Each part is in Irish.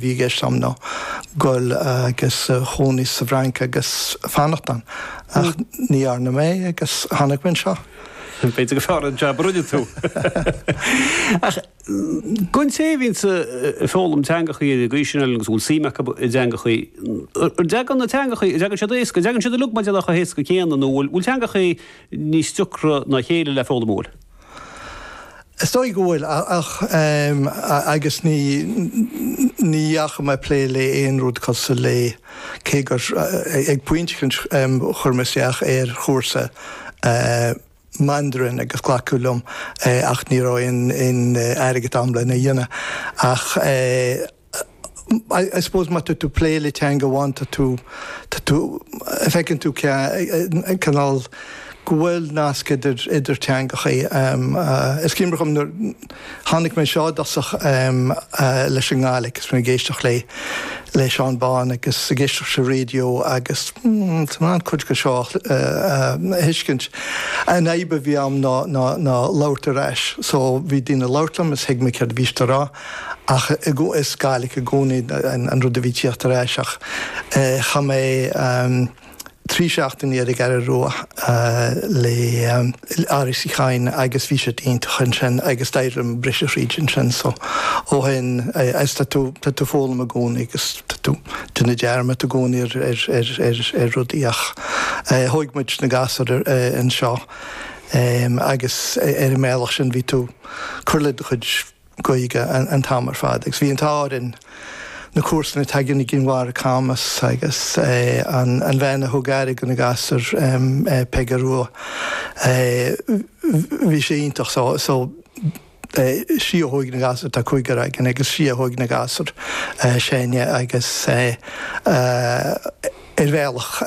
bhí i gceist agam ná goil agus cónaí sa bhFrainc agus fanacht ann. Ach ní dhearna mé agus tháinig mé anseo. B'fhéidir gur fearr an jab a rinne tú. Ach don té a bhíonns ag foghlaim teangachaí ag aois sin eile agus a bhfuil suim acu i dteangachaí, an dteagann na teangachaí, an dteagann siad éasca, an dteagann siad uilig mar a déarfá chomh héasca céanna nó an bhfuil teangachaí níos deacra ná a chéile le foghlaim? An bhfuil? Is dóigh go bhfuil, ach, agus ní, ní dheachaigh mé ag plé le aon rud cosúil le, cé gur, ag pointe éicint chuir mé isteach ar chúrsa Mandarin agus glacadh liom, ach ní raibh aon airgead agam lena dhéanamh. Ach. I suppose má tá tú ag plé le teanga amháin tá tú, tá tú, feiceann tú cé, cineál, go bhfuil nasc idir, idir teangachaí. Is cuimhin liom nuair tháinig mé anseo i dtosach leis an nGàidhlig agus mé ag éisteacht le, le Seán Bán agus ag éisteacht leis an raidió agus tá mé in ann cuid de seo a thuiscint. An fhadhb a bhí ann ná, ná, ná labhairt ar ais. So bhí daoine ag labhairt liom is thuig mé céard a bhí siad a rá. Ach is Gaelic i gcónaí an rud a bhí ag tíocht ar ais ach chaith mé trí seachtaine ar an gCeathrú Rua le Áras Uí Chadhain agus bhí siad iontach ansin agus d'éirigh liom briseadh thríd ansin so ó shin agus tá tú tá tú ag foghlaim i gcónaí agus tá tú ag déanamh dearmad i gcónaí ar ar ar rudaí ach thóig muid na gasúir anseo agus ar an mbealach sin bhí tú ag cur le do chuid Gaeilge an t-am ar fad agus bhí an t-ádh orainn na comharsana atá againn i gCinn Mhara, Camas agus an bhean a thug aire do na gasúir, Peige Rua, bhí sí iontach so sí a thóig na gasúir, tá cúigear againn, agus sí a thóig na gasúir, Séanie agus. ar bhealach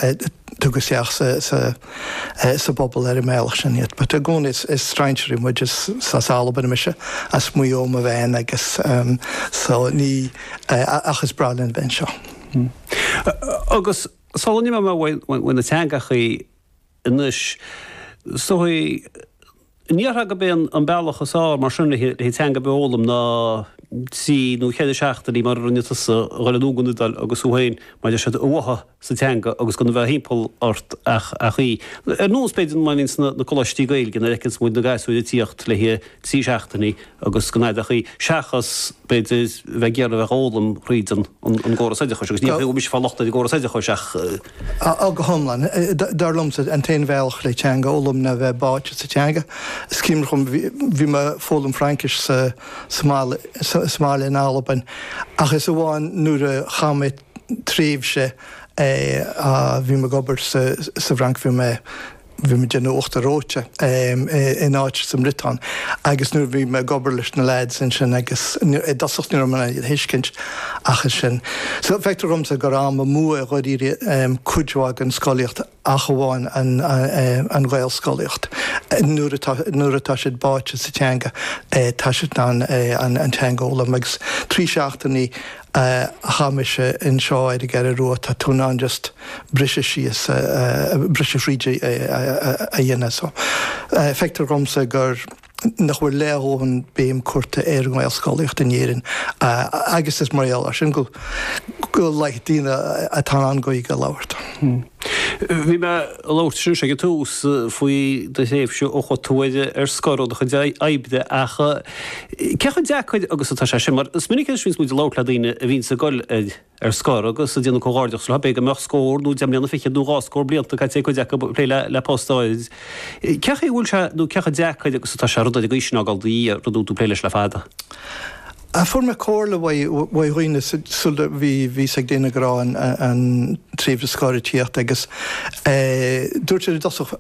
tugadh isteach sa bpobal ar an mbealach sin iad. But i gcónaí is strainséirí muid, is as Albain mise, as Maigh Eo mo bhean agus so ní, ach is breá linn a bheith anseo. Agus sula n-imeoidh mé ó na teangachaí anois, so An ndéarfá gurb é an bealach is fearr mar sin le teanga ar bith a fhoghlaim ná trí nó ceithre seachtainí mar a rinne tusa a dhul anonn don Iodáil agus thú féin, mar a deir siad, a bháthadh sa teanga agus gan a bheith thimpeall ort ach í. Ar nós b'fhéidir, mar a bhíonn sna Coláistí Gaeilge nuair a fheiceanns muid na gasúir ag tíocht le haghaidh trí seachtainí, agus go n-aithneochaí, seachas b'fhéidir bheith ag iarraidh a bheith ag foghlaim thríd an gcóras oideachais, agus níl mise ag fáil locht ar an gcóras oideachais ach. Á, go hiomlán. Dar liomsa, an t-aon bhealach le teanga a fhoghlaim ná bheith báite sa teanga. Is cuimhin liom, bhí mé ag foghlaim Fraincis sa mbaile in Albain, ach is amháin nuair a chaith mé tréimhse, bhí mé ag obair sa bhFrainc, bhí mé. Bhí mé ag déanamh uachtar reoite in áit sa mBriotáin agus nuair a bhí mé ag obair leis na lads ansin agus i dtosach ní raibh mé in ann a thuiscint ach ansin so feictear dhomsa gur am amú i ndáiríre cuid mhaith den scolaíocht ach amháin an Ghaelscolaíocht nuair atá, nuair atá siad báite sa teanga tá siad in ann an teanga a fhoghlaim agus trí seachtainí a chaith mise inseo ar an gCeathrú Rua, tá tú in ann just briseadh síos, briseadh thríd a dhéanamh. So, feictear dhomsa gur, nach bhfuil leath a dhóthain béim curta ar an nGaelscolaíocht in Éirinn agus is mar gheall ar sin go, go laghad daoine atá in ann Gaeilge a labhairt. Bhí mé ag labhairt anois ag an tús faoi do thréimhse ó chuaigh tú ar scor ó do chuid oibre ach cé chomh deacair agus atá sé sin? Mar is minic anois bhíonns muid ag labhairt le daoine a bhíonns ag dul ar scor agus ag déanamh comhghairdeachas leo, b'fhéidir go mbeadh scór nó deich mbliana fichead nó dhá scór blianta caite ag cuid acu ag plé le post áirid. Cé chaoi a bhfuil sé nó cé chomh deacair agus atá sé rud mar sin a fhágáil i do dhiaidh, rud a bhfuil tú ag plé leis le fada? Á fuair mé comhairle uaidh dhaoine sul a bhíos ag déanamh, go raibh an tréimhse scortaíochta agus dúirt siad i dtosach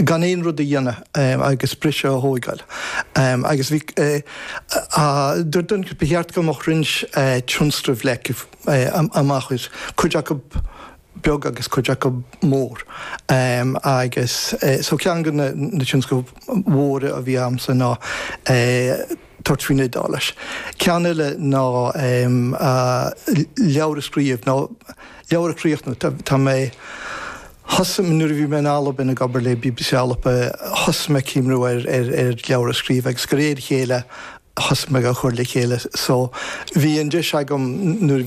gan aon rud a dhéanamh agus briseadh a thóigeáil. Agus bhí dúirt duine acu ba cheart go mbeadh roinnt tionscnaimh leagtha amach ar chuid acu beag agus cuid acu mór. Agus so ceann de na na tionscnaimh mhóra a bhí agamsa ná tabhairt faoin Iodáilis. Ceann eile ná leabhar a scríobh nó leabhar a chríochnú. Tá tá mé, thosaigh nuair a bhí mé in Albain ag obair le bbc Alba thosaigh mé ag cuimhniú ar ar ar leabhar a scríobh agus de réir a chéile thosaigh mé ag cur le chéile. So bhí an deis agam nuair a